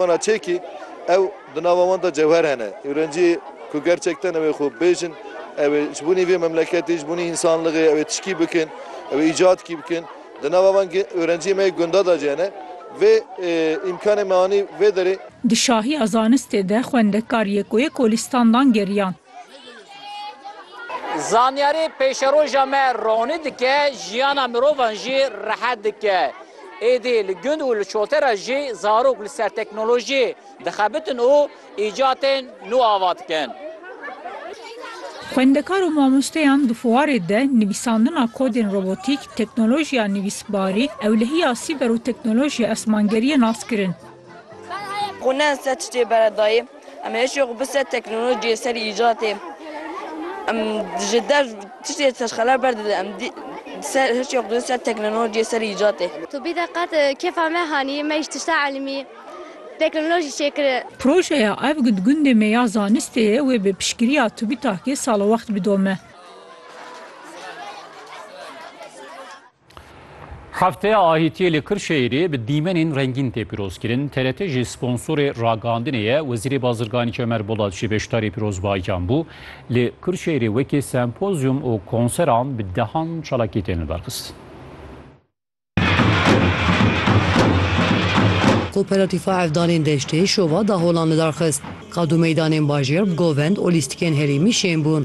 Wana çekî ew di nava wan de cewher hene. Ewrencî ku gerçekten ew ê xwe bibêjin, ew ê ji bûnî vê memleketê, ji bûnî însanlixê ew ê tişkî bikin, ew ê îcadkî bikin. Di nava van ewrenciyên me yê gunda de jî hene. Vê îmkanê me anî vê derê. Di şahiya zanistê de xwendekar yê ku yê Kolistandan geriyan. Zanyarî pêşeroja me ronî dike, jiyana mirovan jî rehet dike. Êdî li gund û li şote re jî zarok li ser teknolojî dixebitin û îcatên nû ava dikin. Xwendekar û mamosteyan di fuarê de nivîsandina kodên robotîk, teknolojiya nivîsbarî, ewlehiya sîber û teknolojiya esmangeriyê nas kirin. Xwe ne li ser tiştê bere dayê. Em ê hişê xwe bi ser teknolojiyê, ser îcatê. Em ji dev tiştê serxela ber didin. Em dî ser hişê xwe didin ser teknolojiyê, ser îcatê. Tu bî de qet kêfa me hanî, me ji tişta elmî, teknolojî çêkirin. Projeya Ev gund gundê me ya zanistê ye wê bi piştgiriya TÜBİTAK'ê salowext bidome. Hefteya Ahîtiyê li Kirşehîrê bi dîmenên rengîn tê pîrozkirin. TRT jî sponsorê ragihandinê ye. Wezîrê Bazirganî Çemer Bolat jî beşdarî pîrozbahiyan bû. Li Kirşehîrê wekî sempozyum û konseran bi dehan çalakî tên li ber xistin. Koperatifa Hevdanên Deştê şova daholan li dar xist. Qad û meydanên bajêr bi govend û lîstikên herêmî şên bûn.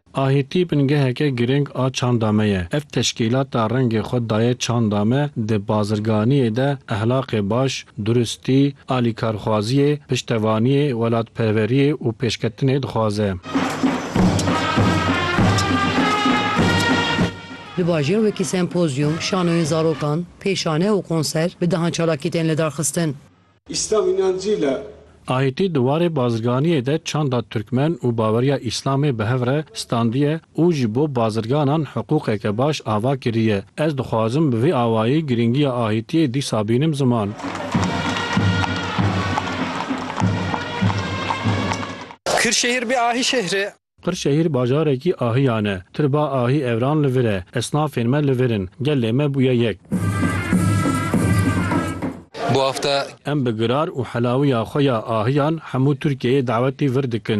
Ahîtî bingeheke girîng a çanda me ye. Ev teşkîlata rengê xwe daye çanda me, di bazirganiyê de ehlaqê baş, duristî, alîkarxwaziyê, piştevaniyê, welatperweriyê û pêşketinê dixwaze. Di bajêr wekî sempozyûm, şanoyên zarokan, pêşane û konser bi dehan çalakî tên lidarxistin. Îslam înancî le. Aîtî di warê bazirganiyê de çanda Tirkmen û baweriya Îslamê bi hev re standiye û ji bo bazirganan hiqûqeke baş ava kiriye. Ez dixwazim bi vî awayî girîngiya aîtiyê dîsa bînim ziman. Kırşehir bir ahi şehri. Qirşehîr bajarekî ahiyan e. Tirba ahî evran li vir e. Esnafên me li vir in. Gelê me bûye yek. Em bi girar û helawiya xwe ya ahiyan hemû Tirkiyeyê dawetî vir dikin.